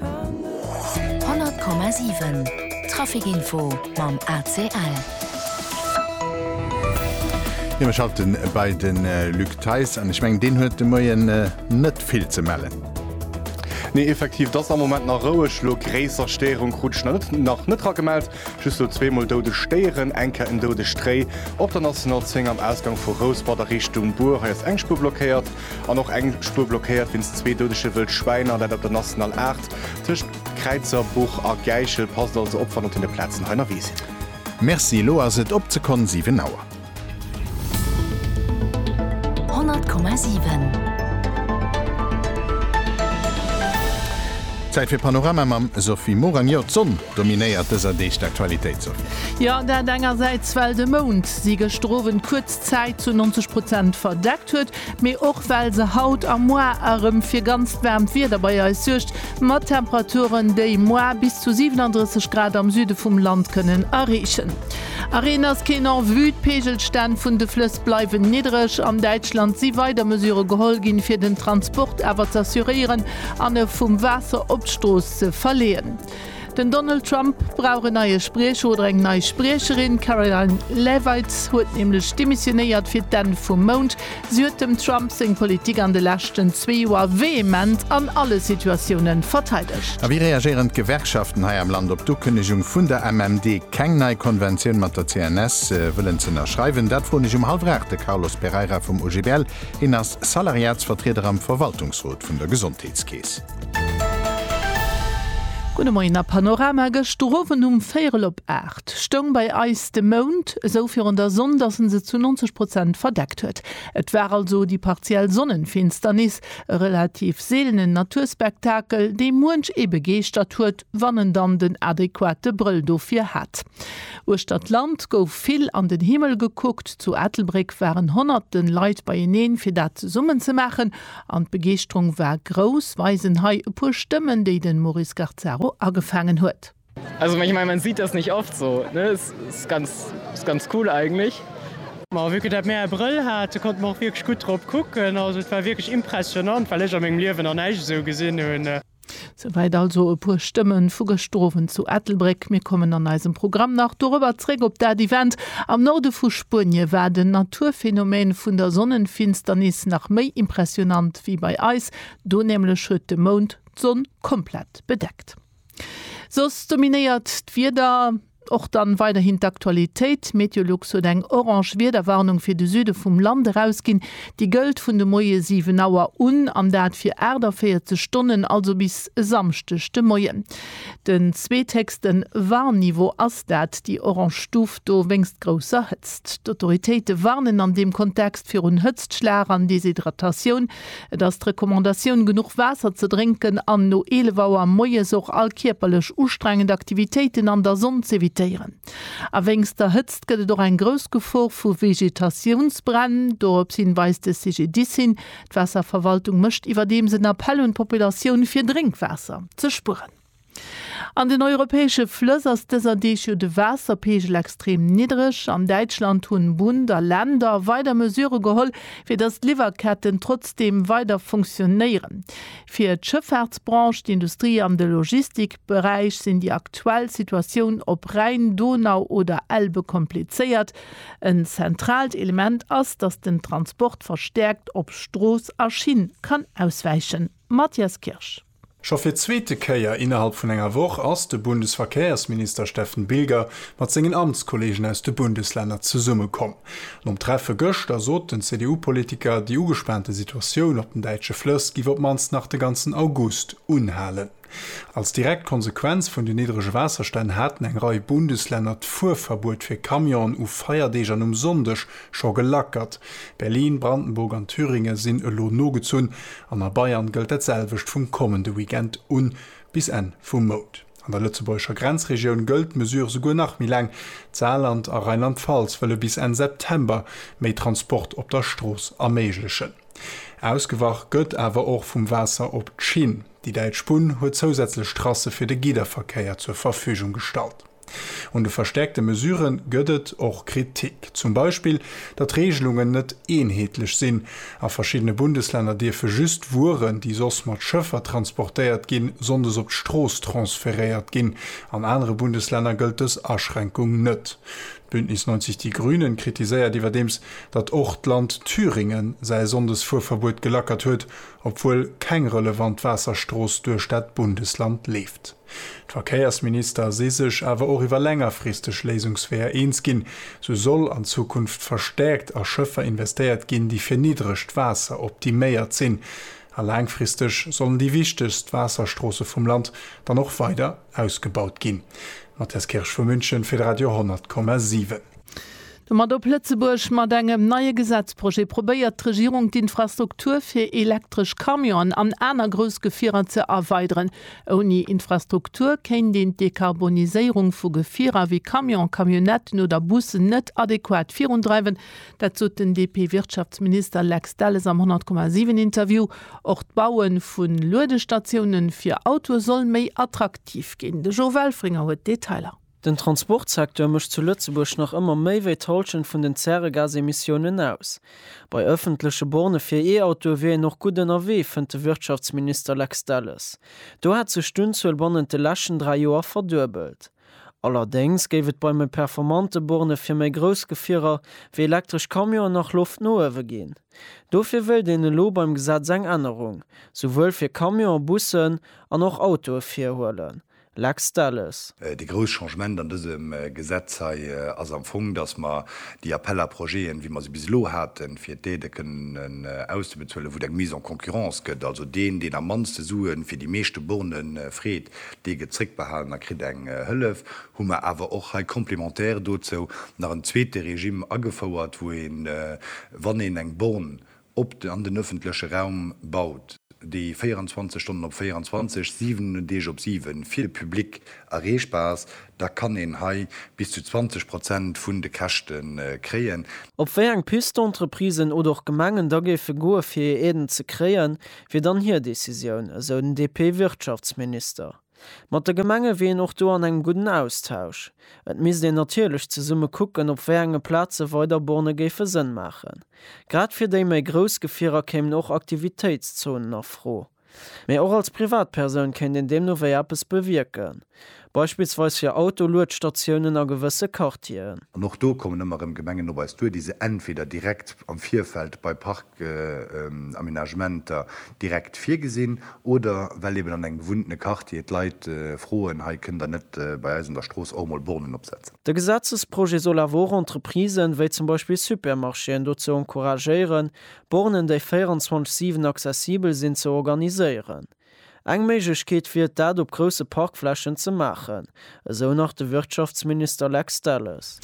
100,7 Trafic-Info mam ACL. Jo, mir schalten bei de Luc Theis an. Ech mengen, deen huet de Moien net vill ze mellen. Nee, effektiv, 't ass am Moment nach roueg. Elo gréisser Stéierung krut ech nach net, nach net eragemellt. Just elo zweemol doudeg Stéieren, eng Kéier en doudegt Réi op der National 10 am Ausgang vu Rouspert a Richtung Bur. Hei ass eng Spuer blockéiert. An och eng Spuer blockéiert wéinst zwee doudege wëll Schwäiner, dat op der National 8 tëscht Kräizerbuch a Gäichel. Passt also op, wann op deene Plazen hei nerwee sidd. Merci, elo ass et op d'Sekonn 7 Auer. 100,7. Zäit fir Panorama mam Sophie Morang. Jo, d'Sonn dominéiert dëser Deeg d'Aktualitéit, Sophie. Jo, dat engersäits, well de Mound si gëschter Owend kuerz. Zäit zu 90 Prozent verdeckt huet, mee och well se haut a moar erëm fir ganzt waarmt Wieder bei eis suergt, mat Temperaturen, déi moar bis zu 37 Grad am Süde vum Land kënnen erreechen. A Reen ass keen en vue, d'Peegelstänn vun de Flëss bleiwen niddereg. An Däitschland si weider Mesure geholl ginn, fir den Transport awer z'assuréieren an e vum Waasser op d'Strooss ze verleeën. Den Donald Trump brauch en neie Spriecher oder eng nei Spriecherin. D'Karoline Leavitt huet nämlech demissionéiert fir d'Enn vum Mount. Si huet dem Trump seng Politik an de leschten zwee Joer vehement an alle Situatioune verteidegt. A wéi reagéieren d'Gewerkschaften hei am Land op d'Ukënnegung vun der MMD, keng nei Konventioun mat der CNS wëllen z'ënnerschreiwen? Dat froen ech um hallef 8 de Carlos Pereira vum OGBL. Hien ass Salariatsvertrieder am Verwaltungsrot vun der Gesondheetskeess. Gudde Moien a Panorama. Gëschter Owend um véierel op 8 stoung bei eis de Mound esou virun der Sonn, dass en se zu 90 Prozent verdeckt huet. Et war also déi partiell Sonnenfinsternis, e relativ seelenen Naturspektakel, dee muench ee begeeschtert huet, wann en dann den adequate Brëll dofir hat. Uechter d'Land gouf vill an den Himmel gekuckt. Zu Ettelbréck waren honnerten Leit beieneen, fir dat zesummen ze maachen. An d'Begeeschterung war grouss. Weisen hei e puer Stëmmen, déi den Maurice Garzaro agefaangen huet. Also ich mein man sieht das nicht oft so ne es ist ganz ist ganz cool eigentlich. Ma wéi ke dat mär e Brëll hate konnte mer och wierklech gutt drop kucken. Also et war wierklech impressionant, well ech a mengem Liewen nach näischt esou gesinn hunn. Souwäit also e puer Stëmmen vu gëschter Owend zu Ettelbréck. Mir kommen an eisem Programm nach dorobber zréck op dat Event. Am Norde vu Spuenie war den Naturphänomen vun der Sonnenfinsternis nach méi impressionant wéi bei eis. Do nämlech huet de Mound d'Sonn komplett bedeckt. Soss dominéiert d'Wieder. Och dann weiderhin d'Aktualitéit, Meteolux huet eng orange Wiederwarnung fir de Süde vum Land erausginn. Déi gëllt vun de Moie 7 Auer un an dat fir 48 Stonnen, also bis e Samschdeg de Moien. Den zweethéchste Warnniveau ass dat, déi orange Stuf do wéinst grousser Hëtzt. D'Autoritéite warnen an deem Kontext virun Hëtztschlag an Deshydratatioun. Et ass d'Recommandatioun, genuch Waasser ze drénken an no 11 Auer moies och all kierperlech ustrengend Aktivitéiten an der Sonn z'evitéieren. A wéinst der Hëtzt gëtt et och eng grouss Gefor vu Vegetatiounsbränn. Dorops hin weist de CGDIS hin. D'Waasserverwaltung mécht iwwerdeems en Appell un d'Populatioun, fir Drénkwaasser ze spueren. An den europäesche Flëss ass dëser Deeg jo de Waasserpeegel extrem niddereg. An Däitschland hunn Bund a Länder weider Mesure geholl, fir datt d'Liwwerketten trotzdeem weider funktionéieren. Fir d'Schëffaartsbranche, d'Industrie an de Logistikberäich sinn déi aktuell Situatioun op Rhäin, Donau oder Elbe komplizéiert. En zentraalt Element ass, datt den Transport verstäerkt op Strooss a Schinn kann auswäichen. Mathias Kirsch. Scho fir d'zweete Kéier innerhalb vun enger Woch ass de Bundesverkehrsminister Steffen Bilger mat sengen Amtskollegen aus de Bundeslänner zesummekomm. Nom Treffe gëschter sot den CDU-Politiker, déi ugespaante Situatioun op den däitsche Flëss giff op d'mannst nach de ganzen August unhalen. Als direkt Konsequenz vun den niddrege Waasserstänn haten eng Rei Bundeslänner d'Fuerverbuet fir Camionen u Feierdeeg an um Sonndeg Scho gelackert. Berlin, Brandenburg an Thüringen sinn elo nogezunn an a Bayern gëllt dat selwecht vum kommende Weekend un bis Enn vum Mount. An der lëtzebuergescher Grenzregioun gëllt d'Mesure souguer nach méi laang. D'Saarland a Rheinland-Pfalz wëlle bis Enn September méi Transport op der Strooss erméiglechen. Ausgewach gëtt awer och vum Waasser op d'Schinn. Déi däitsch Bunn huet zousätzlech Trasse fir de Gidderverkéier zur Verfügung gestallt. Un de verstärkte Mesurë gëtt et och Kritik. Zum Beispill, datt Reegelungen net eenheetlech sinn. A verschiddene Bundeslänner dierfe just Wueren, déi soss mat Schëffer transportéiert ginn, sonndes op d'Strooss transferéiert ginn. An anere Bundeslänner gëllt dës Aschränkung net. D'Bündnis 90 Die Grünen kritiséiert iwwerdeems, datt och d'Land Thüringen säi Sonndesfuerverbuet gelackert huet, obwuel keng relevant Waasserstrooss duerch dat Bundesland leeft. D'Verkéiersminister si sech awer och iwwer längerfristeg Léisungsweeër eens ginn. Sou soll an Zukunft verstäerkt a Schëffer investéiert ginn, déi fir niddregt Waasser optiméiert sinn. A laangfristeg sollen déi wichtegst Waasserstroosse vum Land dann och weider ausgebaut ginn. Matthias Kirsch vu München fir de Radio 100,7. Domat op Lëtzebuerg. Mat engem neie Gesetzprojet probéiert d'Regierung d'Infrastruktur fir elektresch Camionen an aner grouss Gefierer ze erweideren. Ouni Infrastruktur kéint een d'Dekarboniséierung vu Gefierer wéi Camionen, Camionnetten oder Bussen net adequat virundreiwen. Dat sot den DP-Wirtschaftsminister Lex Delles am 100,7 Interview. Och d'Baue vu Luedestatioune fir Autoe soll méi attraktiv ginn. De Jo Welfringer huet d'Detailer. Den Transportsecteur mécht zu Lëtzebuerg nach ëmmer méi wéi d'Hallschent vun den Zäregasemissiounen aus. Bei ëffentleche Bornë fir E-Autoe wier een och gutt ënnerwee, fënnt de Wirtschaftsminister Lex Delles. Do hätt sech d'Unzuel bannent de leschten dräi Joer verduebelt. Allerdéngs géif et bei méi performante Bornë fir méi grouss Gefierer, wéi elektresch Camionen, nach Loft no uewe ginn. Dofir wéilt een elo beim Gesetz eng Ännerung, souwuel fir Camionen, Bussen an och Autoe virhuelen, Lex Delles. Dee grouss Changement an dësem Gesetz hei ass am Fong, dass mer déi Appels à projets'en, wéi mer se bis elo haten, fir d'Aidë kënnen auszebezuelen, wou et eng Mise en concurrence gëtt, also deen, deen am mannste Sue fir déi meeschte Borne freet, dee gëtt zréckbehalen a kritt eng Hëllef, hu mer awer och hei complémentaire dozou nach en zweete Regime agefouert, wou een, wann een eng Borne op an den ëffentleche Raum baut, déi 24 Stonnen op 24, 7 Deeg op 7 fir de Public erreechbar ass, da kann een hei bis zu 20 Prozent vun de Käschte kréien. Op wéi eng Piste d'Entreprisen oder och Gemengen da géife goe fir hir Aiden ze kréien, wier dann hir Decisioun, esou den DP-Wirtschaftsminister. Mat de Gemenge wier een och do an engem gudden Austausch. Et misst een natierlech zesumme kucken, op wéi enge Plaze weider Borne géife Sënn maachen. Grad fir déi méi grouss Gefierer kéimen och Aktivitéitszonen a Fro. Mee och als Privatpersoun kéint een deemno wéi eppes bewierken. Beispillsweis fir Autoluedstatiounen a gewësse Quartieren. An och do kommen ëmmer erëm Gemengen op eis duer, déi se entweder direkt am Virfeld bei Parkaménagementer direkt virgesinn oder well eben an engem bewunnene Quartier d'Leit froen, hei kënnt der net bei eis an der Strooss och emol Bornen opsetzen. De Gesetzesprojet soll awer och Entreprisen, wéi zum Beispill Supermarchéen dozou encouragéieren, Bornen, déi 24, 7 accessibel sinn, ze organiséieren. Eng Méiglechkeet wier et dat op grousse Parkflächen ze maachen. Esou nach de Wirtschaftsminister Lex Delles.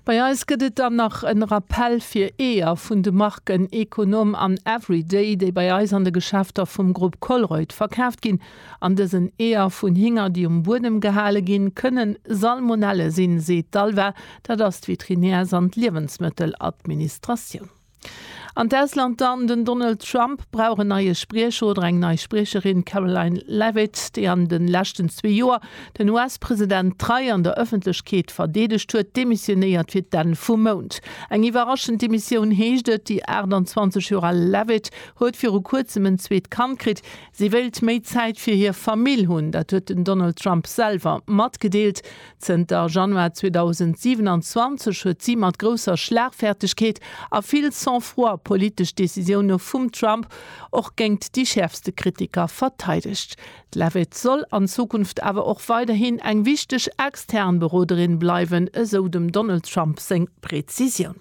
Bei eis gëtt et dann nach en Rappell fir Eeër vun de Marken Econom an Everyday, déi bei eis an de Geschäfter vum Grupp Colruyt verkaaft ginn. An dësen Eeër vun Hinger, déi um Buedem gehale ginn, kënnen Salmonelle sinn, seet d'ALVA, dat ass d'Veterinärs an d'Liewensmëtteladministratioun. An d'Ausland dann, Den Donald Trump brauch en neie Spriecher oder eng nei Spriecherin, D'Karoline Leavitt, déi an de leschten zwee Joer den US-President trei an der Ëffentlechkeet verdeedegt huet, demissionéiert fir d'Enn vum Mount. Eng iwwerraschend Demissioun heescht et. Déi 28 Joer al Leavitt huet viru kuerzem en zweet Kand kritt. Si wéilt méi Zäit fir hir Famill hunn. Dat huet den Donald Trump selwer matgedeelt. Zënter Januar 2027 huet si mat grousser Schlagfertegkeet a vill Sang-froid politesch Decisioune vum Trump och géingt déi schäerfste Kritiker verteidegt. D'Leavitt soll an Zukunft awer och weiderhin eng wichteg extern Beroderin bleiwen, esou dem Donald Trump seng Prezisioun.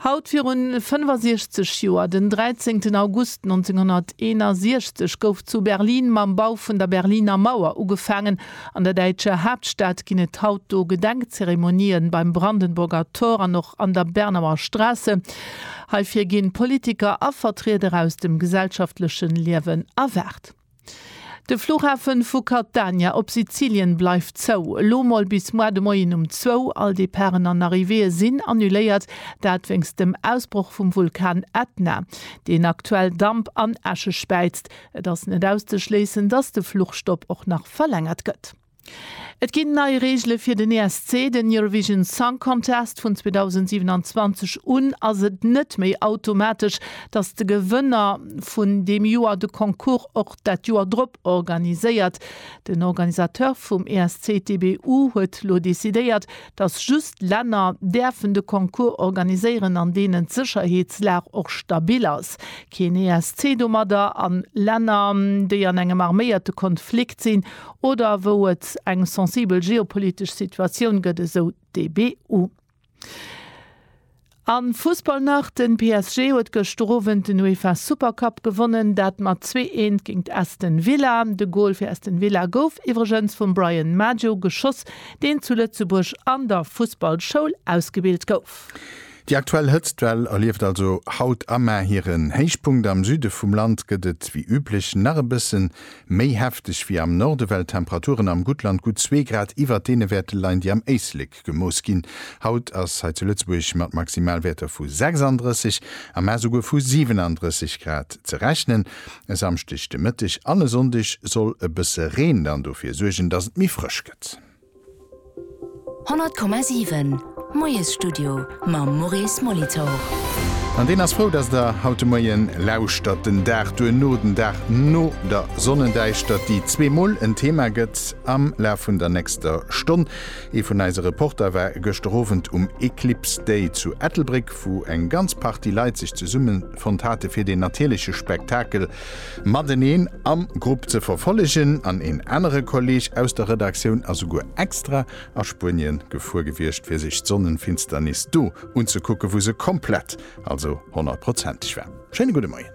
Haut virun 65 Joer, den 13 August 1961, gouf zu Berlin mam Bau vun der Berliner Mauer ugefaangen. An der däitscher Haaptstad ginn et haut do Gedenkzeremonien beim Brandenburger Tor an och an der Bernauer Straße. Heifir ginn Politiker a Vertrieder aus dem gesellschaftlechen Liewen erwaart. De Flughafe vu Catania op Sizilien bleift zou, elo mol bis moar de Moien um zwou. All Departen an Arrivéeë sinn annuléiert, dat wéinst dem Ausbroch vum Vulkan Ätna, deen aktuell Damp an Äsche späizt. Et ass net auszeschléissen, datt de Fluchstopp och nach verlängert gëtt. Et ginn nei Reegele fir den ESC, den Eurovision Song Contest. Vun 2027 un ass et net méi automatesch, datt de Gewënner vun deem Joer de Concours och dat Joer drop organiséiert. Den Organisateur vum ESC TBU huet lo decidéiert, datt just Länner däerfen de Concours organiséieren, an deenen d'Sécherheetslag och stabil ass. Keen ESC domadder a Länner, déi an engem arméierte Konflikt sinn, Oder wou et eng sensibel geopolitesch Situatioun gëtt, esou d'EBU. A Fussball nach, Den PSG huet gëschter Owend den UEFA Super Cup gewonnen, dat mat zwee Eent géingt Aston Villa. De Gol fir Aston Villa gouf iwwregens vum Bryan Maggio geschoss, deen zu Lëtzebuerg an der Fussballschoul ausgebilt gouf. Déi aktuell Hëtztwell erlieft also haut am Mä hiren Héichpunkt. Am Süde vum Land gëtt et wéi üblech nach e bësse méi hefteg wéi am Norde, well d'Temperaturen am Guttland gutt zwee Grad iwwert deene Wäerte leien, déi am Éislek gemooss ginn. Haut ass hei zu Lëtzebuerg mat Maximalwäerter vu 36, am Mä souguer vu 37 Grad ze rechnen. E Samschdeg de Mëtteg an e Sonndeg soll e bësse Reen dann dofir suergen, dass et méi frësch gëtt. 100,7 Moiesstudio mam Maurice Molitor. An deen ass frou, dass Der haut de Moien lauschtert. Den Dag duerno, den Dag no der Sonnendäischtert, déi zweemol en Thema gëtt am Laf vun der nächster Stonn. Ee vun eise Reporter war gëschter Owend um Eclipse Day zu Ettelbréck, wou eng ganz Partie Leit sech zesummefonnt hate fir deen natierleche Spektakel mateneen am Grupp ze verfollegen an een anere Kolleg aus der Redaktioun ass souguer extra a Spuenien gefuer gewiescht fir sech d'Sonnenfinsternis do unzekucken wou se komplett, also honnertprozenteg war. Schéine gudde Moien.